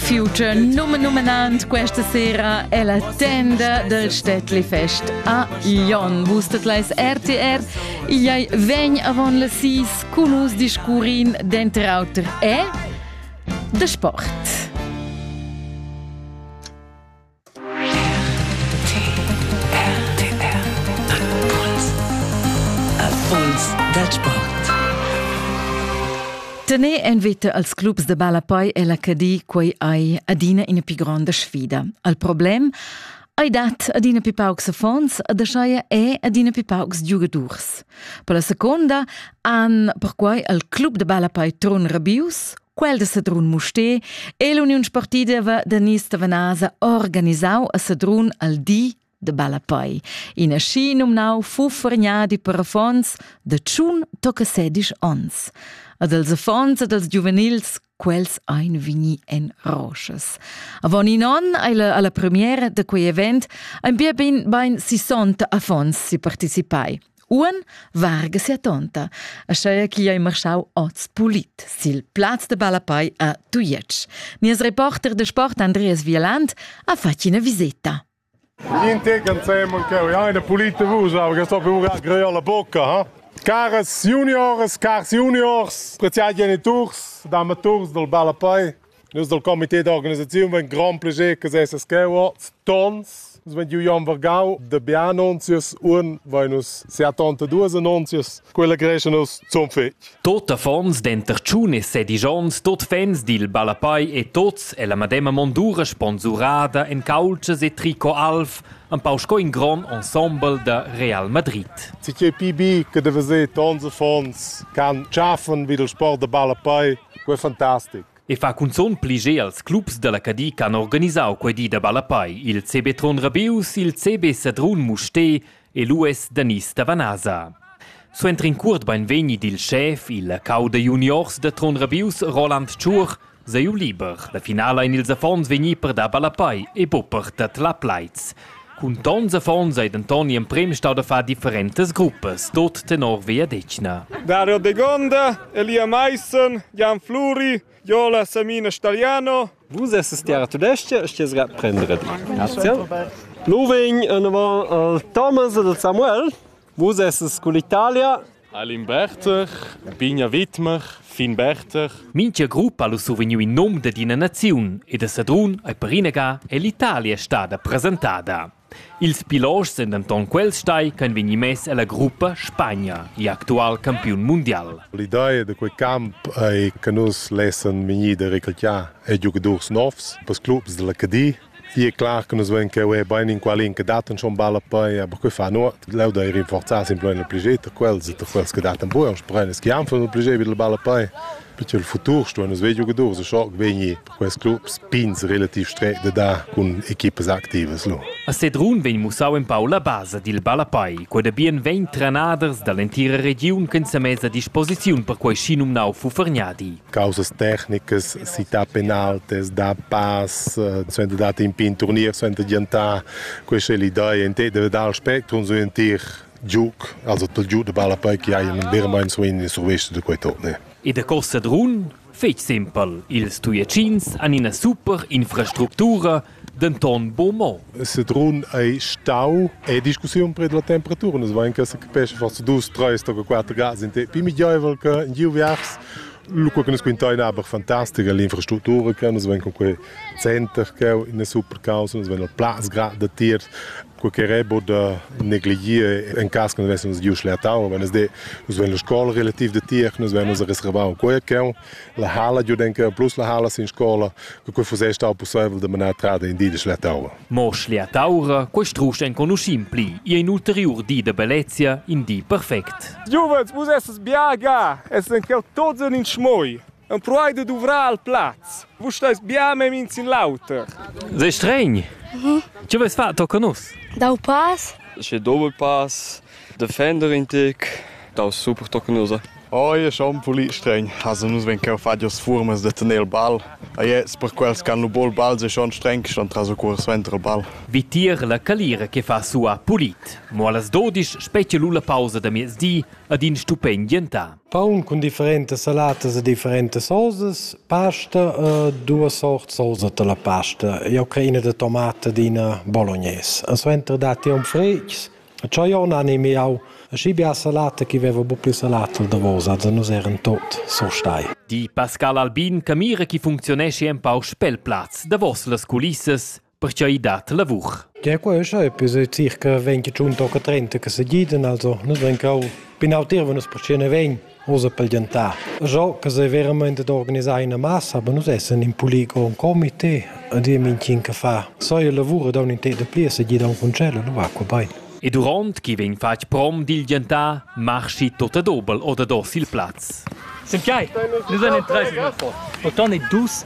Future numenumnant questa sera è la tenda del Städtli Fest a Lyon. Wustet leis RTR, Iai vegn avon la sis cun us discurin denter auter e de sport. Impuls dal sport. Tener en vita als clubs de ballapei e la Cadi quei ei adina ina più grande sfida. Al problem Ei dat adina più paucs affons ad aschaia e adina più paucs giugadurs. Per la seconda han perquai al club de ballapei Tron Rabius Quel de Sedrun Musté è l'uniun sportiva da Nis Tavanasa organisau a Sedrun al di de Balapoi. In aschi nomnau fu forgnadi per affons de tschun tocca sedisch ons. Ad els affons ed als giuvenils quels ein vigni en roches. Avon in on alla, alla premiera de quei event ein bia ben, bein 60 affons si participai. Uon varga sia tonta, aschia ch'igl ei marschau oz pulit sil plaz de ballapei a Tujetsch. Nies reporter de sport Andreas Vieland ha fatg ina viseta. Niente canzemo che ho eine pulite vusau che sto più greia la bocca, ha? Caras juniors, cars juniors, preziai geniturs, damaturs del ballapei, Nus dal comité d'organisaziun vein grand plascher che sesas cheu tons. Nus vein giu Jan Vargau de bia annunzias, un vein nus seattanta duas annunzias. Quella creescha nus zum fetg. Tot affons denter tschun e sedisch onns, tot fans dil ballapai e tots ella madema mondura sponsurada en caultschas e tricot alv, empau sco in gron ensemble da Real Madrid. Ti che PB che de veser tons affons can tschaffen vid il sport de ballapai Quei è fantastic. E fa cunzun pli ge als clubs dalla Cadi che han organisau quei di da ballapei, il CB Tron Rabius, il CB Sedrun Musté e l'US Danis da Vanasa. Suenter in cuort beinvegni dil schef, il cau da juniors da Tron Rabius, Roland Tschur, sei liber. La finala ein ils affons vegni per dar ballapei e bopper dat la plaids. Cun tons affons ei denton gl'emprem stau da far differentas gruppas, tot tenor vegliadetgna. Dario Degonda, Elia Maissen, Jan Fluri, Jola Samina Stagliano. Vus esses tiara tudestga e sties grad prendere di. Loving, en avant Thomas ed Samuel. Vus essas cun l'Italia? Alin Berter, Bigna Widmer, Fin Berter. Mincha gruppa ha survegniu in nom dad ina naziun e da Sedrun ei perinaga è l'Italia stada presentada. Ils pilots sind denton quels stai che han vegni mess ella gruppa Spagna, il actual campiun mundial. L'idea da quei camp ei che nus lessan vegnir da recrutar e giugadurs novs per clubs dalla Cadi Ie clar che nus vein cheu e bein inqualin che dat schon balla pei, aber quei fa nuot. Leu da ir rinforzar simpel il plagiet da quels e da quels che dat buca, sprein es chi han fun il plagiet vid il balla pei. Perché il futur sto nus vei giugadurs e schoc vegnir per quels clubs pins relativ stret da dar cun equipas activas lu. A Sedrun vegn mussau empau la basa dil ballapei. Quei da bien vegn trenaders dall'entira regiun ch'en semess a disposiziun per quei schinumnau Fufergnadi. causas tecnicas si ta penaltes da pass suenter dat in pin turnier suenter giantar questa è l'idea in te deve dar spectrum su in tir giuc also tol giu de balla poi che hai un vero mein so in survescio de quei torne e da costa drun fetg simpel ils tuiacins han ina super infrastructura denton buc mo. Sedrun ei stau ei discussiun preda la temperatura. Nus vein che secapescha forsa dus, treis toca quater grads in te pli miglieivel che in giu viars. Lu quei che nus quintein aber fantastica l'infrastruttura che nus vein con quei center che ina super causa, nus vein il plaz grad da tier quei che rebo da negligir en cas che nus vessemos giu schlertau, wenn es de nus wenn la scola relativ de tier, nus vennus a reservau quei che la hala giu denke plus la hala sin scola, che quei fuss stau possibel de manar trada in di de schlertaura. Mo schlertaura, quei strusch enconuschim pli, ia in ulteriur di de bellezia, in di perfect. Giuvens, vus esses biaga, esses en quel tots in schmoi. Empruai da duvrar al plaz. Vus stais bia memia in sin l'auter. Sei stregn. Mhm. Tge vais far tochen nus? Dau pass. Sche doppel pass. Defender in tic. Dau super tochen nus. Oi, è schon pulì stregn. Also nus ven cheu fadios furmas de tener il ball. A jetzt per quels can lu bol ball se schon streng schon tras o curs ventre ball. Vitir la calira che fa sua pulit. Mo las 12 specie lu la pausa da miezdi ad in stupend gentà. Paun cun differentas salatas e differentas sosas, pasta e duas sort sosa da la pasta. Jau crei ina da tomata ed ina bolognaise. E suenter datti aunc fritgs. Tscheu jau n'animi jau schi bia salata ch'i veva buc pli salata al davos, also nus eran tot surstai. Di Pascal Albin che mira chi funcziuneschi empau spel plaz davos las culissas pertgei dat lavur. Ja, questo è più circa 25 o 30 che se giden, also nus ven cau pinau tir wenn uns percene ven usa pel gentar. Jo che se veramente d'organizzare una massa, aber nus essen in polico un comité a dir minchin che fa. So il lavoro da un inter de pli se gida un concello, lo va qua bei. E durant che vegn fatg prom dil gentar, marschi tot a dobel oder dos il plaz. Sem chai, nus an 30 Pourtant est douce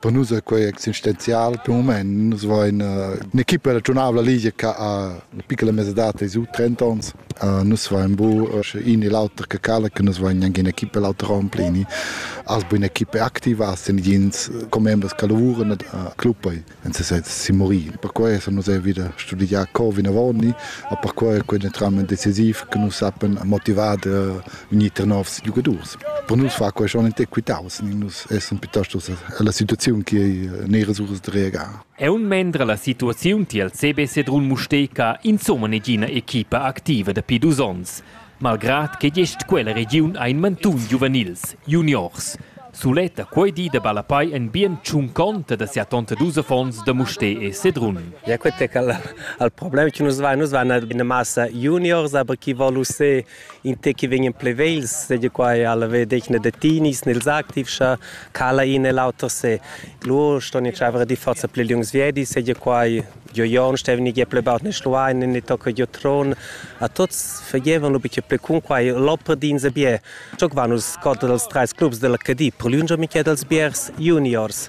Per nus è quei existenzial per mument. Nus vein un'equipa regiunabla ligia che ha una piccola mesadad dei su 30 onns. nus vein bu in e l'auter che cala, che nus vein anche un'equipa l'auter Ramplini. Als bu un'equipa activa, als sind jens commembers che lavuran a club en sesez si morì. Per questo nus è wieder studiar co vinavoni, e per questo è quindi tramite decisiv che nus sappiamo motivare unir novs giocators. Per nus fa quei schon in'equitaus, nus essan piuttosto alla situaziun che ei neras uras da reagar. Aunc mendre la situaziun tiel CB Sedrun Mustega insomma negina equipa activa dapi dus onns, malgrad che gest quella regiun ein mantun giuvenils, juniors. Suletta quei di da Balapai en bien tschunconta da sia tonta dus affons da Mustè e Sedrun. Ja, quet è al, al problem che nus vai, nus vai ina massa juniors, aber chi volu se in te che vegnan plevels seigi quai alla vedegna de tinis nels activs scha cala in e l'auter se lur ston in chavere di forza ple lungs viedi seigi quai jo jon stevni ge ple baut ne schluain ne tocca jo tron a tots fagevan lu biche ple cun quai l'opera din ze bie Ciò vanus scot dels treis clubs della Cadi, per lunge mica dels biers juniors.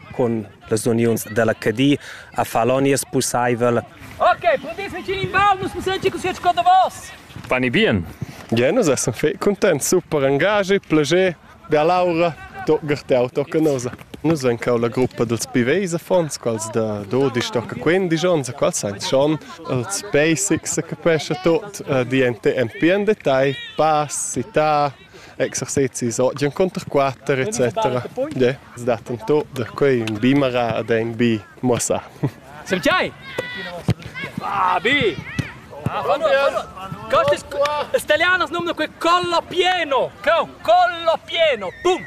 cun las uniuns dalla Cadi a far l'onies pusseivel. Ok, pudis vicin in bel, nus possiam ci così co davos. Pani bien. Bien, nus essan fei cuntents, super engagi, plager, da Laura, toccar te autocanosa. Nus en cau la gruppa dels Piveis affons, quals da 12 tocca 15 onns, quals sein schon els basics, se capesce tot, uh, di en te en pien detail, pass, città, exercezis oggi encunter quatter etc. Yeah. Es dat en tut da quei ün bimara ad ein bi muossà. Sem chai? Ah, bi! Stalianos num quel collo pieno! No, collo pieno! Pum!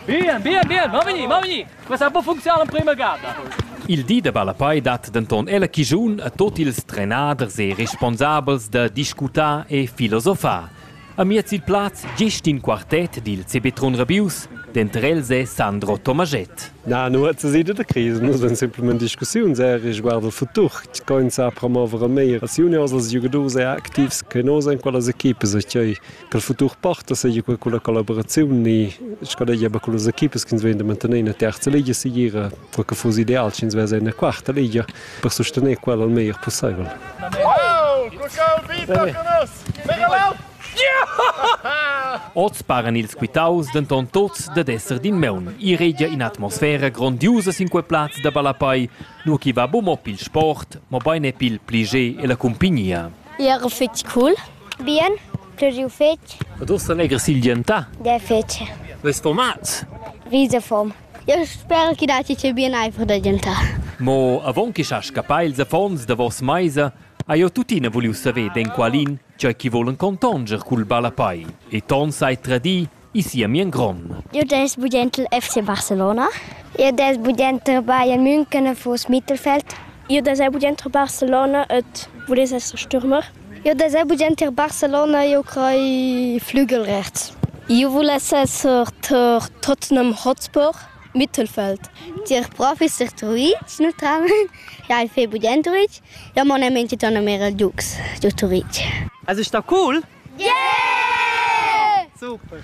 Bien, bien, bien, va veni, va veni! Questa può funzionare in prima gara! Il di da Balapai dat denton ella chigiun a tot ils trenaders e responsabels da discutar e filosofar. Amiez il plaz gest in quartet dil sepetrun rabius, denter els è Sandro Tomaschett. Na, nu het sedi da crisi, nus en simplement discussiun sehr riguard il futur, tg'ein sa promover a meir als juniors, als giugadurs e activs che nos en quellas equipas e ch'ei quel futur porta, seia quei culla collaboraziun ni schadegia ba cullas equipas ch'ins vegn da mantener ina terza ligia segira, per che fuss ideal sch'ins vess ina quarta ligia per sustener quella il meglier pusseivel. Wow! Guck out, Vita con us! Oz paran ils quitaus denton tuts dad esser d'in meun. I regia in'atmosfera grondiusa sin quei plaz da ballapai, nua ch'i va buc mo pil sport, mobein e pil pli gie ella cumpignia. Era fetg cool. Bien, pluriu fetg. Ed ussa legher silgientà. Der fetg. Ves format? Visa form. Eu sper che datti che bien aifer da gentar. Mo avon che sa scappar ils affons davos meisa, ha jeu tuttina vuliu saver d'enqualin tgei che vulan contonscher cul ballapei e ton sai tradir in sia mien gron. Io dess budenter FC Barcelona. Io dess budenter Bayern München e vos Mittelfeld. Io dess budenter Barcelona et voless esser Stürmer. Io dess budenter Barcelona, io crei Flügel rechts. Io voless esser Tottenham Hotspur. Mittelfeld. Tier prof. instruì snutrava. Ja, il fait budent Turitg. Ja, mon è mente torna mera il Dux giù Turitg. Also ist da cool? Yeah! Super!